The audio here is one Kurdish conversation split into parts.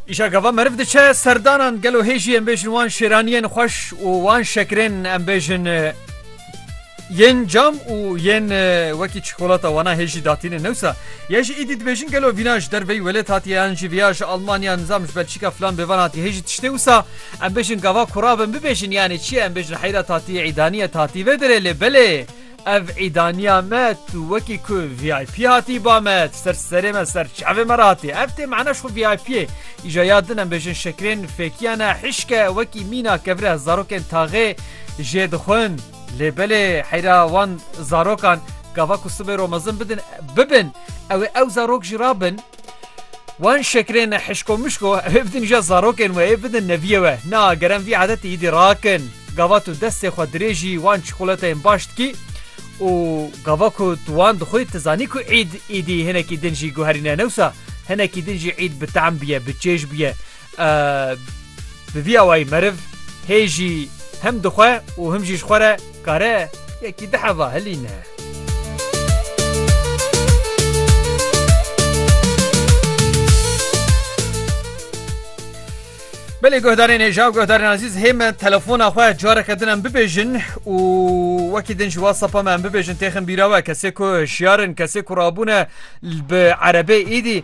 Îşa gava meriv diçe serdanan gelo hêjî em bêjin wan şêraniyên xweş û wan şekirên em bêjin yên cam û yên wekî çikolata wana hêjî datîne newsa ye ji îdî dibêjin gelo vîna ji derveyî welêt hatiye yan jî viya ji Almanya nizam ji Belçîka filan bêvan hatî hêjî tiştê wisa em bêjin gava kurabin bibêjin yanê çiye em bêjin heyra tatî îdaniye tatî vê derê lê belê Ev îdaniya me, tu wekî ku VIP hatî ba me, tu ser serê me, ser çavê me re hatî. Ev tê mana ji xwe VIP'ê. Îja ya din em bêjin şekrên fêkiyan e, hişke wekî mîna kevre zarokên taxê jê dixwin. Lê belê heyra wan zarokan gava ku sibê ro mezin bidin, bibin, ew ê ew zarok jî rabin. Wan şekrên hişko mişko evê bidin ja zarokên we ê bidin neviye we. Na gerem vî adetê îdî rakin. Gava tu destê xwe dirêjî wan çikolateyên baş dikî û gava ku tu wan dixwî tu zanî ku îd îdî hinekî din jî guherîne ne wisa hinekî din jî îd bi tehm bûye bi çêj bûye. Bi vî awayî meriv hê jî hem dixwe û him jî ji xwe re kare yekî di heva hilîne. Belê guhdarên hêja û guhdarên azîz hê me telefona xwe careke din em bibêjin û wekî din ji WhatsApp me em bibêjin têxin bîra we kesê ku hişyar in kesê ku rabûne bi erebê êdî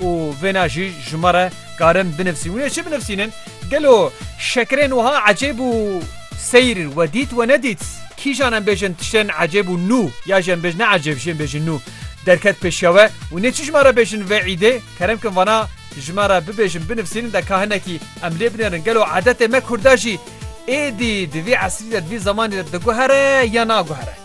Û vêna jî ji me re karin binivsîn. Wê çi binivsînin? Gelo şekirên wiha ecêb û seyr we dît we nedît? Kîjan em bêjin tiştên ecêb û nû ya jî em bêjin ne ecêb jî em bêjin nû derket pêşiya we û nê çi ji me re bêjin vê îdê? Kerem kin vana ji me re bibêjin binivsînin de ka hinekî em lê binêrin. Gelo edetê me kurda jî êdî di vî esrî de di vî zemanî de diguhere ya naguhere?